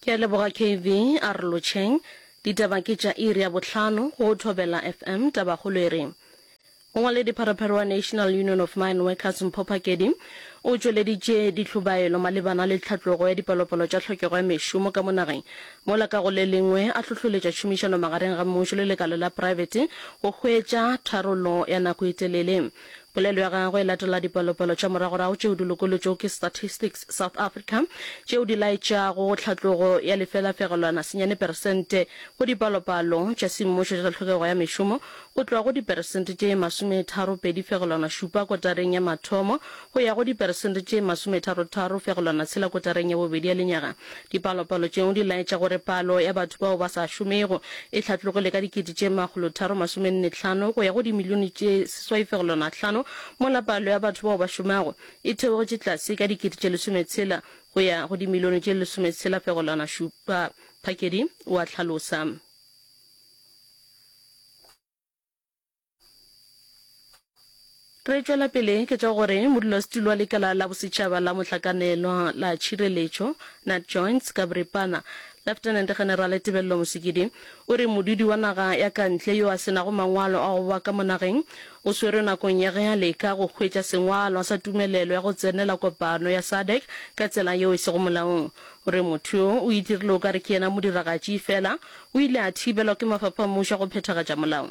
Ke a leboga KV a re lotšheng. Ditaba ke tša iri ya bohlano go Thobela FM. Tabakgolo e re, Mongwaledipharopharo wa National Union of Mine Workers Mpho Phakedi o tšweleditše dihlobaelo malebana le tlhatlogo ya dipalopalo tša tlhokego ya mešomo ka mo nageng mola ka go le lengwe a hlohloletša tšhomišano magareng ga mmušo le lekala la praebete go hwetša tharollo ya nako e telele. Polelo ya gagwe e latela dipalopalo tša moragorago tšeo di lokolotšwego ke Statistics South Africa tšeo di laetšago tlhatlogo ya lefelafegelwana senyane peresente go dipalopalo tša semmušo tša tlhokego ya mešomo go tloga go diperesente tše masometharo pedi fegelwana šupa kotareng ya mathomo go ya go diperesente tše masometharo tharo fegelwana tshela kotareng ya bobedi ya lenyaga Dipalopalo tšeo di laetša gore palo ya batho bao ba sa šomego e hlatlogile ka dikete tše makgolotharo masomennetlhano go ya go dimilione tše seswaifegolonahlano, mola palo ya batho bao ba šomago e theogetše tlase ka dikete tše lesometshela go ya go dimilione tše lesometshela-fegolanašupa, Phakedi o a hlalosa. Re tšwela pele ke tša gore modulasetulo wa lekala la bosetšhaba la mohlakanelwa la tšhireletšo Nat Joints ka boripana, Lieutenant General Tebello Mosekedi, o re modudi wa naga ya ka ntle yo a se nago mangwalo a go ba ka mo nageng o swerwe nakong ya ge a leka go hwetša sengwalwa sa tumelelo ya go tsenela kopano ya SADC ka tsela yeo e sego molaong. O re motho yo o itirile o ka re ke yena modiragatši efela o ile a thibelwa ke mafapha a mmušo go phethagatša molao.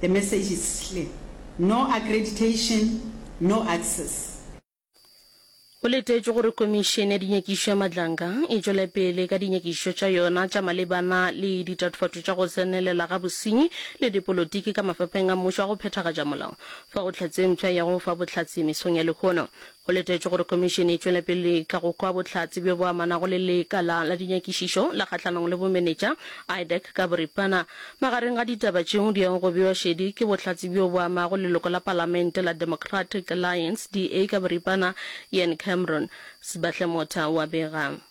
The message is clear, no accreditation, no access. Go letetšwe gore Komišene ya Dinyakišo ya Madlanga e tšwele pele ka dinyakišišo tša yona tša malebana le ditatofatšo tša go tsenelela ga bosenyi le dipolotiki ka mafapheng a mmušo a go phethagatša molao fa go tlhatse mpsha ya go fa bohlatse mesong ya lehono. Go letetšwe gore Khomišene e tšwela pele ka go kwa bohlatse bjo bo amanago le lekala la dinyakišišo la kgahlanong le bomenetša, IDEC, ka boripana. Magareng ga ditaba tšeo di yago go bewa šedi ke bohlatse bjo bo amago leloko la Palamente la Democratic Alliance, DA, ka boripana, Ian Cameron. Sebahlemotha o a bega.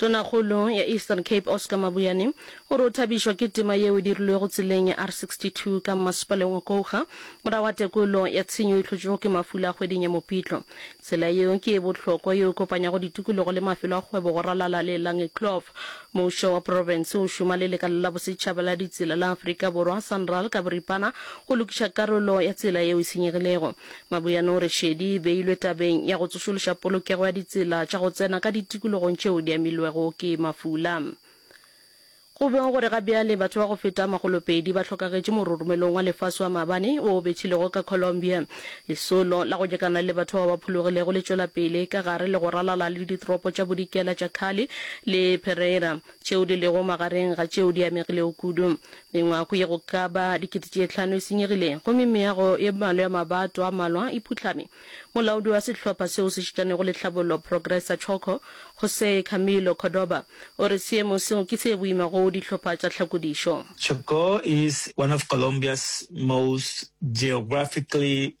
Tonakgolo ya Eastern Cape Oscar Mabuyane o re o thabišwa ke tema yeo e dirilwego tseleng ya R62 ka mmasepaleng wa Kouga morago ga tekolo ya tshenyo e hlotšwego ke mafula kgweding ya Mopitlo. Tsela yeo ke e bohlokwa yeo e kopanyago ditukologo le mafelo a kgwebo go ralala le Langekloof. Mušo wa profense o šoma le lekala la bosetšhaba la ditsela la Afrika Borwa, Sanral, ka boripana go lokiša karolo ya tsela yeo e senyegilego. Maboyana o re šedi e beilwe tabeng ya go tsošološa polokego ya ditsela tša go tsena ka ditikologong tšeo di amilwego ke mafula. Go beng gore ga bjale batho ba go feta makgolopedi ba hlokagetše mororomelong wa lefase wa maabane wo o bethilego ka Colombia. Lesolo la go nyakana le batho bao ba phologilego le tšwela pele ka gare le go ralala le ditoropo tša Bodikela tša Cali le Pereira. tšeo di lego magareng ga tšeo di amegilego kudu. Mengwaku ye go ka ba dikete tše hlano e senyegile, gomme meago ye mmalwa ya mabato a malwa e phuhlame. Molaodi wa sehlopha seo se šitanego le tlhabollo, Progresa Choco, José Camilo Cordoba, o re seemo seo ke se boima go dihlopha tša tlhakodišo. Chocó is one of Colombia's most geographically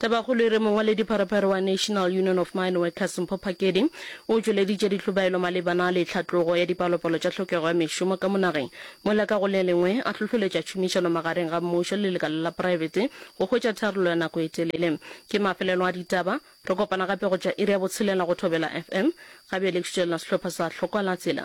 Tabakgolo e re mongwaledipharephare wa National Union of Mine Workers Mpho Phakedi o tšweleditše dihlobaelo malebana le tlhatlogo ya dipalopalo tša tlhokego ya mešomo ka monageng mola ka go le lengwe a hlohloletša tšhomišano magareng ga mmušo le lekala la poraebete go hwetša tharollo ya nako e telele. Ke mafelelo a ditaba. Re kopana gape go tšwa iri ya botshelela go Thobela FM. Gabeele ke šutšelela sehlopha sa Hlokwa la Tsela.